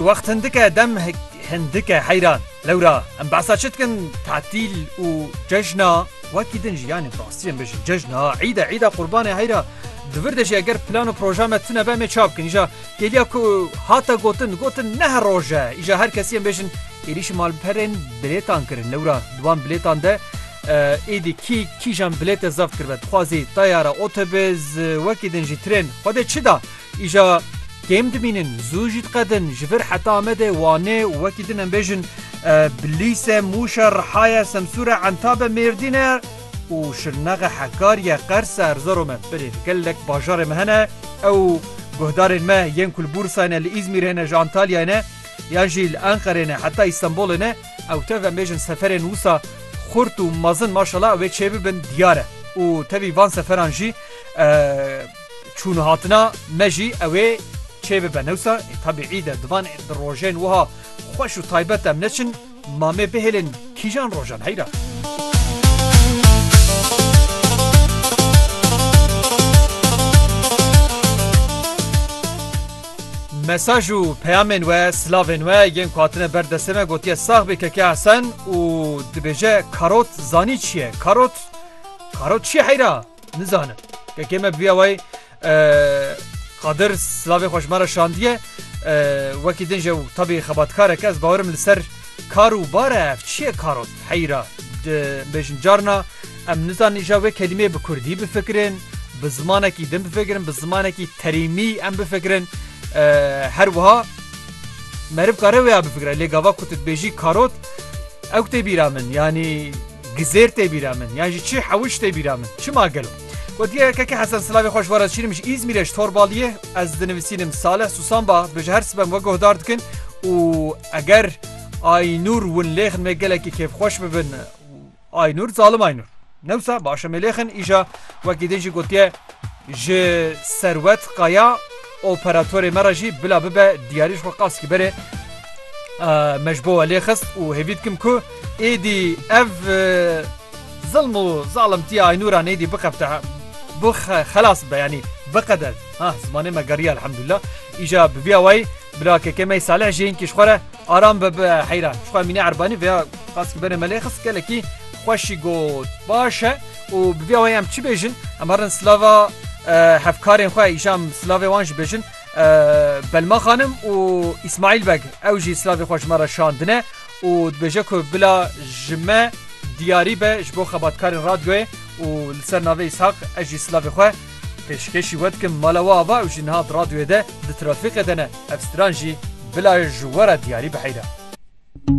Wext hindike dem hindike heyran. Lewra em behsa çi dikin tatîl û cejna wekî din jî yanî rastî em bêjin cejna îde îda qurbanê heyra di vir de jî eger plan û proja me tune be em ê ça bikin îja kêliya ku hate gotin gotin ne her roj e îja her kesî em bêjin êrîşî malperên bilêtan kirin lewra di wan bilêtan de êdî kî kîjan bilête zeft kiribe dixwazî tayara otobûs wekî din jî trên xwedê çi da Îja kêm dimînin, zû jî diqedin, ji vir heta Amedê, Wanê û wekî din em bêjin Bilîse, Mûşe, Rihaye, Semsûre, Entabe, Mêrdîne û Şirnexe, Hekariye, Qerse, Erzero me birê li gelek bajarê me hene. Ew guhdarên me yên ku li Bûrsayê ne, li Îzmîrê ne, ji Antalyayê ne yan jî li Enqerê ne heta Îstenbolê ne ew tev em bêjin seferên wisa xurt û mezin maşallah ew ê çêbibin diyar e û tevî van seferan jî Çûn hatina me jî ew ê çêbibe. Newsa ê tebîî de divan di rojên wiha xweş û taybet em neçin mamê bihêlin kîjan rojan heyra. Mesaj û peyamên we, silavên we yên ku hatine ber destê me gotiye sax bê Keke Hesen û dibêje karot zanî çi ye? Karot? Karot çi ye heyra? Nizanim. Kekê me bûya wayê Qadir silavê xwe ji me re şandiye. Wekî din ji tabî xebatkarek ez bawerim li ser kar û bar e ev çiye karot heyra bêjin carna em nizan îja wê kelîmeyê bi kurdî bifikirin bi zimanekî din bifikirin bi zimanekî terîmî em bifikirin her wiha meriv kare wê ya bifikire lê gava ku tu dibêjî karot ew tê bîra min yanî Gizêr tê bîra min yan jî çi hewij tê bîra min. Çima gelo? Gotiye yekeke Hesen silavê xwe ji we re dişînim ji Îzmîrê ji Torbaliyê ez dinivisînim Saleh Susan ba bi ji her sibem we guhdar dikin û eger Aynûr win lêxin me gelekî kêfxweş bibin Aynûr zalim Aynûr. Newsa başe me lêxin îja wekî din jî gotiye ji Serwet Qaya Operatorê me re jî bila bibe diyarî ji xwe qas ki berê me ji bo we lê xist û hêvî dikim ku êdî ev zilm û zalimtiya Aynûran êdî bixebite bo xelas bibe yanî biqede ha zimanê me geriya elhamdulillah îja bi vîya wayî bila keke me Salih jî hinkî ji xwe re aram be bi heyra ji xwe mîne erbanî vêya qas ki berê me lê xist gelekî xweşî got baş e. Û bi vî awayî em çi bêjin? Em herin silava hevkarên xwe îşa em silavê wan jî bêjin. Belma Xanim û Îsmaîl Beg ew jî silavê xwe ji me re şandine û dibêje ku bila ji me diyarî be ji bo xebatkarên radyoyê û li ser navê Îshak ez jî silavê xwe pêşkêşî we dikim. Mala we ava ew jî niha di radyoyê de di trafîqê de ne. Ev stran jî bila ji we re diyarî biheyre.